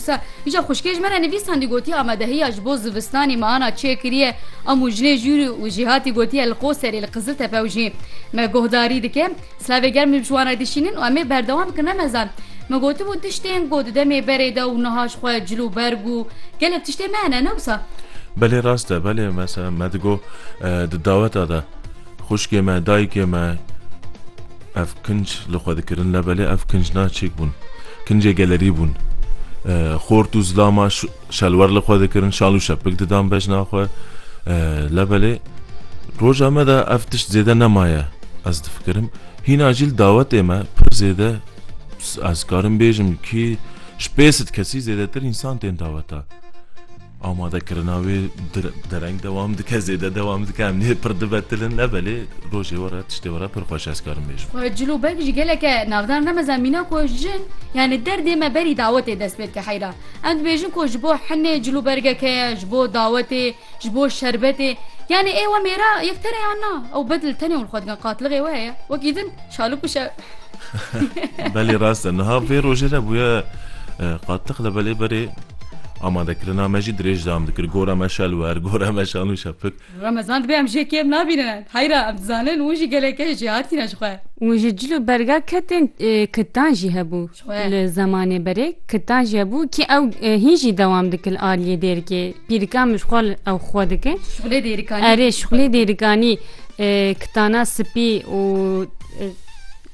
Qisa îja xwişkê ji me re nivîs hindî gotiye amadehiya ji bo zivistanê me ana çê kiriye em û jinê jûr û jîhatî gotiye li Qoserê li Qiziltepe û jî me guhdarî dike silavê germ li ciwan re dişînin û em ê berdewam bikin ne mezan min gotibû tiştên got di demê berê de û niha ji xwe cil û berg û gelek tiştê me hene ne wisa. Belê rast e belê mesela me digot di daweta de. Xwişkê me, dayikê me ev kinc li xwe dikirin lebelê ev kinc na çêk bûn. Kincê gelerî bûn. Xort û zilama şelwer li xwe dikirin, şal û şepik didan bejna xwe. Lebelê roja me de ev tişt zêde nemaye ez difikirim. Hîna jî li dawetê me pir zêde ez karim bêjim kî ji pêsit kesî zêdetir însan tên daweta. Amadekirina wê dereng dewam dike, zêde dewam dike, em nê pir dibe tilin ne belê rojê we re tiştê we re pir xweş ez karim bêjim. Cilo belk jî geleke navdar ne mezan mîna ku jin yanî derdê me berî dawetê dest pê dike heyra. Em dibêjin ku ji bo hinê cilo bergeke ye, ji bo dawetê, ji bo şerbetê. Yanî ê we mêra yek tere yan na. Ew bedil tenê û li xwe dikin qatilixê we heye. Wekî din şalik û şer. Belê rast e. Niha vê rojê re bûye qatiq li belê berê amadekirina me jî dirêj dam dikir gora me şelwer gora me şanû şepik. Remezan dibe em jê kêm nabînin. Heyra em dizanin û jî gelek keç jê hatîne ji xwe. Û ji cil û berga ketên kitan jî hebû. Li zemanê berê Kitan je bû kî ew hîn jî dewam dikil aliyê dêrikê. Pîrika min xwe ew xwe dike. Şixulê dêrikanî. Erê şixulê dêrikanî kitana sipî û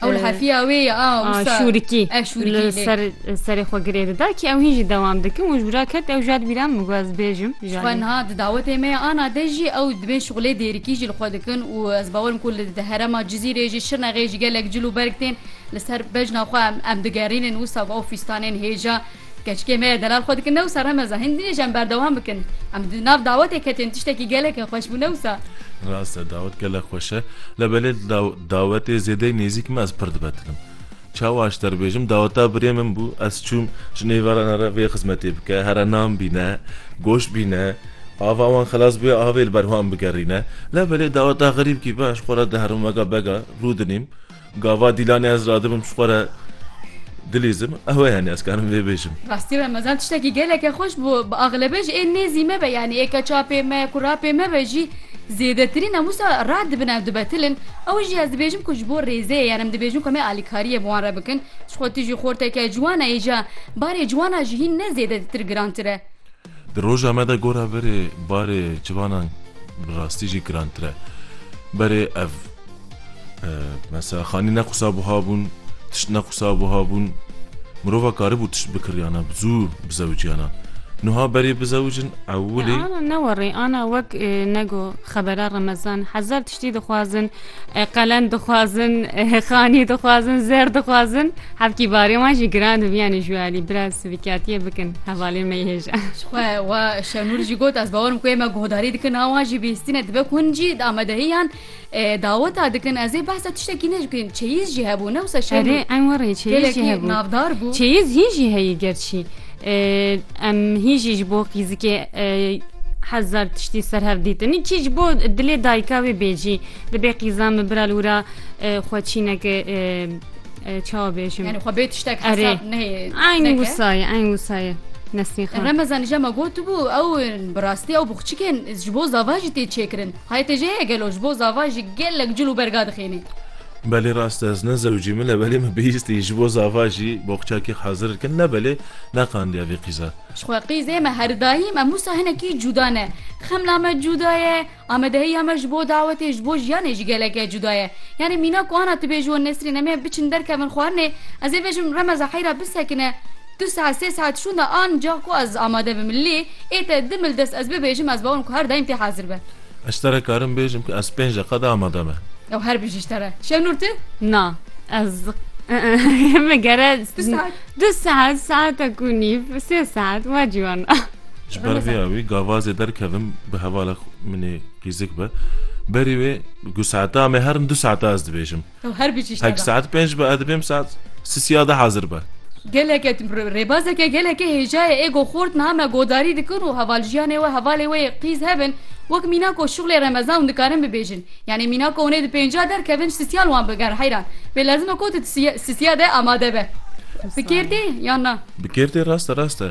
Ew li hefiya wê ye a wisa. Şûrikî. Ev şûrikî. Ser serê xwe girê dida kî ew hîn jî dewam dikin û ji bira ket ew jad bîra min got ez bêjim. Xwe niha di dawetê me ya ana de jî ew dibên şixulê dêrikî jî li xwe dikin û ez bawerim ku li di herema Cizîrê jî Şirnexê jî gelek cil û berg tên Li ser bejna xwe em digerînin wisa bi ofîstanên hêja keçikê me ya delal xwe dikin ne wisa remeza hin nê ji em berdewam bikin. Em di nav dawetê ketin tiştekî gelekî xweş bû ne wisa. Rast e dawet gelek xweş e lê belê di da dawetê zêdeyî nêzîk me ez pir dibetinim. Çawa ji te re bêjim daweta birê min bû ez çûm ji nêvaran here vê xizmetê bike here nan bîne goşt bîne ava wan xilas bibe avê li ber wan bigerîne lê belê daweta xerîbkî be ez ji xwe re di hermûmeka bega rû dinîm. Gava Dîlanê ez radibim ji xwe re dilîzim, ew e yanî ez karim vê bêjim. Rastî re mezan tiştekî geleke xweş bû, bi axlebe jî ê nêzî me be yanî ê keçapê me, kurapê me be jî zêdetirîn em wisa radibin ew dibetil in. Ew jî ez dibêjim ku ji bo rêzeyê yan em dibêjin ku em ê alîkariyê bi wan re bikin. Ji xwe tijî xorteke ciwan e îja barê ciwana jî hîn ne zêdetîtir girantir e. Di roja me de gora berê barê ciwanan bi rastî jî girantir e. Berê ev mesela xanî ne qisa buha bûn, tişt ne qisa buha bûn. Mirova karibû tişt bikiriyana, bi zû bizewiciyana. Nuha berê bizewicin ewilê. Ana ne werê, ana wek ne go xebera remezan hezar Piştî dixwazin, qelem dixwazin, xanî dixwazin, zer dixwazin. Hevkî barê wan jî giran dibî yanî ji we alî biraz sivîkatiyê bikin hevalên me yê hêja. Xwe we Şenûr jî got ez bawerim ku ê me guhdarî dikin a wan jî bihîstîne dibe ku hûn jî amadehiyan daweta dikin ez ê behsa tiştekî ne jî bikin çeyiz jî hebû ne wisa Şenûr. Erê em warê çeyiz jî hebû. Navdar bû. Çeyiz hîn jî heyî gerçî. Em hîn jî ji bo qîzikê hezar tiştî ser hev dîtin. Kî ji bo dilê dayika wê bê cî dibê qîza min bira li wira xwe çîneke çawa bêjim Yani xwe bê tiştek Erê. hesab neyê. Eyn neke. wusayê eyn wusayê Nesmî xan. Remezan jî me gotibû ew bi rastî ew bi xçikên ji bo zava jî tê çêkirin. Hayê te jê heye gelo ji bo zava jî gelek cil û berga dixêne. Belê rast e ez ne zewcî min e belê min bihîstî ji bo zava jî boxçakî hazir dikin ne belê neqandiya vî qîza. Ji xwe qîzê me her daîm em wisa hinekî cuda ne. Xemla me cuda ye, amadehiya me ji bo dawetê ji bo jiyanê jî geleke cuda ye. Yanî mîna ku ana tu bê ji wan Nesrîn em ê biçin derkevin xwarinê ez ê vejim remeza heyra bisekine du saet sê saet şûnda anca ku ez amade bim lê ê te di mil dest ez bibêjim ez bawim ku her daîm tê hazir be. Ez te re karim bêjim ku ez pênc deqa de amade me. Ew her bijî ji te re. Şevnûr tu? Na. Ez me gere Du saet. du saet saetek û nîv sê saet wa ciwan e. Ji ber vê awî gavazê derkevim bi hevala xwe min ê rîzik be. Berî wê ku saeta me herin du saeta ez dibêjim. Ew her bi cîşte Hek be. saet pênc be, ez dibêm saet sisiya de hazir be. Geleke rêbazeke gelekê hêja ye. Êgo xort niha me godarî dikin û hevaljiyanê we hevalê we yê qîz hebin. Wek mîna ku şixulê remezan û dikarin bibêjin. Yanî mîna ku hûnê di pênciya derkevin ji sisiya li wan bigerin heyran. Pê lezim e ku tu di sisiya de amade be. Bi kêrtê yan na? Bi kêrtê rast e, rast e.